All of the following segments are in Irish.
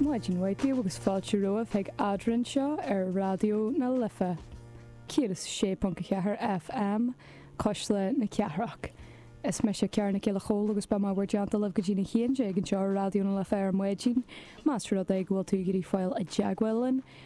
Maidin mhaith daoibh agus fáilte romhaibh chuig Eadrainn seo ar Raidió na Life 106.4 FM, Cuisle na Cathrach. Is mise Ciara Nic Giolla Chomhaill agus beidh mé i bhur dteannta libh go dtí na haon déag anseo ar Raidió na Life ar maidin. Más rud é go bhfuil tú ag iarraidh fáil i dteagmháil linn,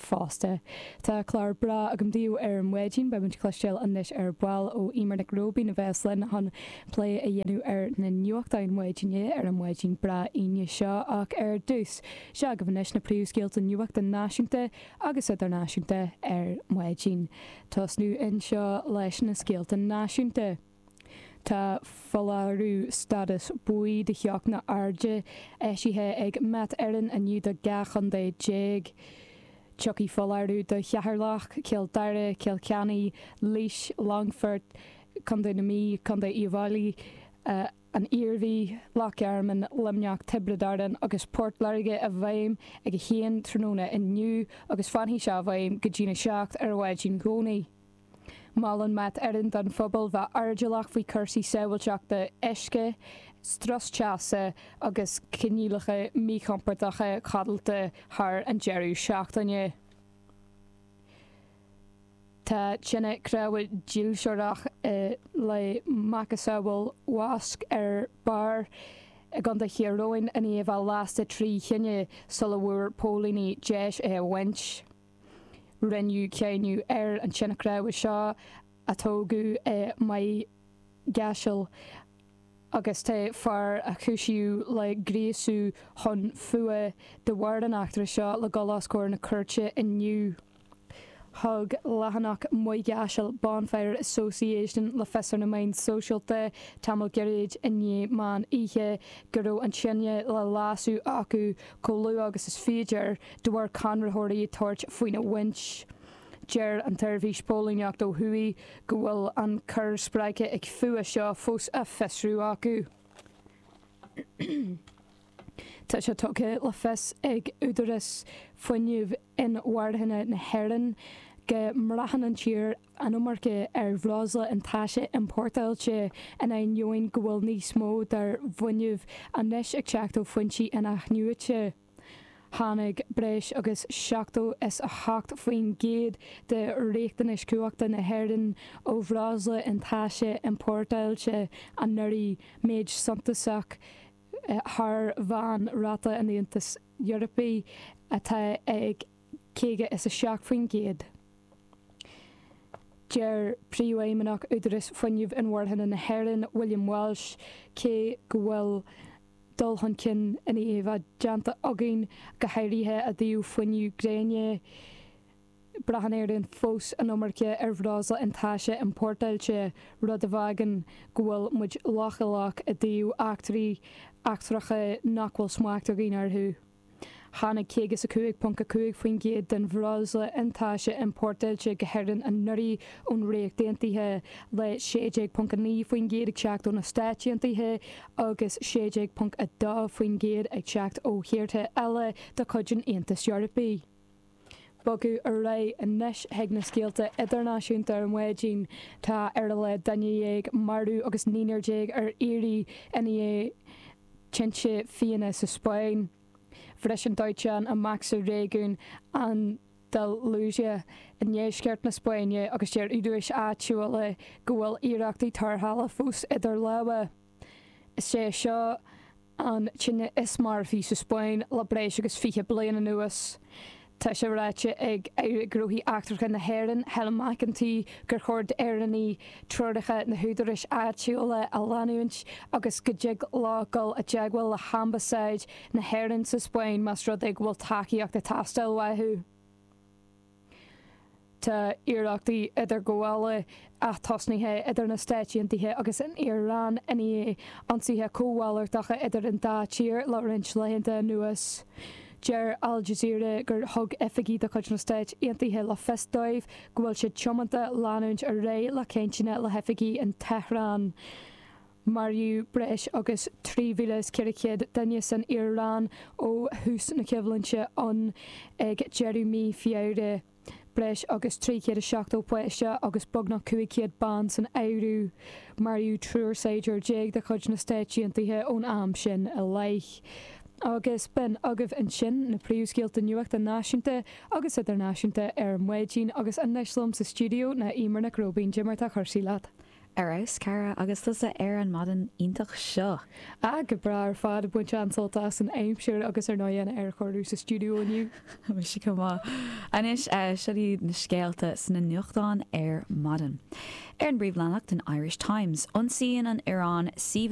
fosta. Tá clár breá agam daoibh ar Mhaidin, beidh muid ag cloistéal anois ar ball ó Emer Nic Róibín a bheas linn chun plé a dhéanamh ar na nuachtáin Mhaidine ar an Mhaidin breá Aoine seo ach ar dtús seo agaibh anois na príomhscéalta nuachta náisiúnta agus idirnáisiúnta ar Mhaidin. Tosnú anseo leis na scéalta náisiúnta. Tá foláireamh stádas buí do theocht na h-airde eisithe ag Met Eireann inniu do 12 chontae. Tiocfaidh foláireamh do Cheatharlach, Cill Dara, Cill Cheannaigh, Laois, Longfort, Co. na Mí, Co. Uíbh Fhailí, An Iarmhí, Loch Garman, Luimneach, Tiobraid Árann agus Port Láirge i bhfeidhm ag 1 tráthnóna inniu agus fanfaidh seo i bhfeidhm go dtína 7 ar a laghad i gcónaí. Molann Mac Fheaراin don phobal bheith airdeallach faoi chúrsaí sábháilteachta uisce, strus teasa agus coinníollacha míchompordacha codlata thar an deireadh seachtaine. Tá tine chrábhaidh dhílsearach i le macasamhail Mhosc ar Barr i gContae Thír Eoghain in aoibh a lasta trí thine sula bhfuair póilíní deis é a bhaint. Rinneadh cáineadh ar an tseanchrábhadh seo a tógadh i Maigh gCaisil agus tá fear a cúisíodh le gríosú chun fuath de bharr an eachtra seo le dul os comhair na cúirte inniu. Thug leathanach Maigh gCaisil Bonfire Association le fios ar na meáin sóisialta tamall gairid i ndiaidh meán oíche go raibh an tine le lasadh acu Chomh luath agus is féidir, de bharr conraitheoirí ag tabhairt faoina bhaint, deir an tSeirbhís Póilíneacht ó thuaidh go bhfuil an cor spreagtha ag fuath seo fós á fiosrú acu. Tá sé tugtha le fios ag údarais fuinnimh inmharthana na hÉireann, go mbraitheann an tír an iomarca ar bhreosla an taise iompórtáilte in ainneoin go bhfuil níos mó dár bhfuinneamh anois ag teacht ó foinsí inathnuaite. Tháinig breis agus seachtó is a hocht faoin gcéad de riachtanais chumhachta na hÉireann ó bhreosla an taise iompórtáilte anuraidh, méid suntasach thar mheán-ráta an Aontais. Eorpaigh atá ag caoga is a seacht faoin gcéad. Deir Príomhfheidhmeannach Údarás Fuinnimh Inmharthana na hÉireann, William Walsh, cé go bhfuil dul chun cinn ionmholta déanta againn, go háirithe i dtaobh fuinnimh gréine, Braitheann Éireann fós an iomarca ar bhreosla iontaise iompórtáilte, rud a fhágann go bhfuil muid leochaileach i dtaobh eachtraí eachtracha nach bhfuil smacht againn orthu. Tháinig 55.5% den bhreosla iontaise iompórtáilte go hÉirinn anuraidh ón Ríocht Aontaithe, le 16.9% ag teacht ó na Stáit Aontaithe agus 16.2% ag teacht ó thíortha eile de chuid an Aontais Eorpaigh. Bogadh ar aghaidh anois chuig na scéalta idirnáisiúnta ar maidin, tá ar a laghad duine déag marbh agus naoinar déag ar iarraidh i ndiaidh tinte fiáine sa Spáinn, bhris an dóiteán amach sa réigiún Andalusia i ndeisceart na Spáinne agus deir údaráis áitiúla go bhfuil iarrachtaí tarrthála fós idir lámha. Is é seo an tine is marfaí sa Spáinn le breis agus fiche bliain anuas. Tá sé ráite ag Aire Gnóthaí Eachtracha na hÉireann, Helen McEntee, gur chóir d'Éireannaigh treoracha na húdaráis áitiúla a leanúint agus go dtig leo dul i dteagmháil le hAmbasáid na hÉireann sa Spáinn más rud é go bhfuil tacaíocht ag teastáil uathu. Tá iarrachtaí idirghabhála atosaithe idir na Stáit Aontaithe agus an Iaráin i ndiaidh ionsaithe comhmhalartacha idir an dá tír le roinnt laethanta anuas. Deir Al Jazeera gur thug oifigigh de chuid na Stáit Aontaithe le fios dóibh go bhfuil siad tiomanta leanúint ar aghaidh le cainteanna le hoifigigh in Tehran Maraíodh breis agus 3,400 duine san Iaráin ó thús na coimhlinte ann ag deireadh mhí Feabhra, breis agus 370 páiste agus beagnach 500 bean san áireamh. Maraíodh triúr saighdiúir déag de chuid na Stáit Aontaithe ón am sin i leith. Agus b'in agaibh ansin na príomhscéalta nuachta náisiúnta agus idirnáisiúnta ar maidin agus anois liom sa stiúideo ná Eimear Nic Róibín. Eimear, cad é mar atá cúrsaí leat. Ar fheabhas, Cara, agus tusa ar an maidin iontach seo! Ah, go breá ar fad, ag baint an-sult as an aimsir agus ar ndóigh an aerchóiriú sa stiúideo inniu. Mise chomh maith. Anois, seo iad na scéalta sna nuachtáin ar maidin. Ar an bpríomhleathanach den Irish Times, ionsaíonn an Iaráin suíomhanna.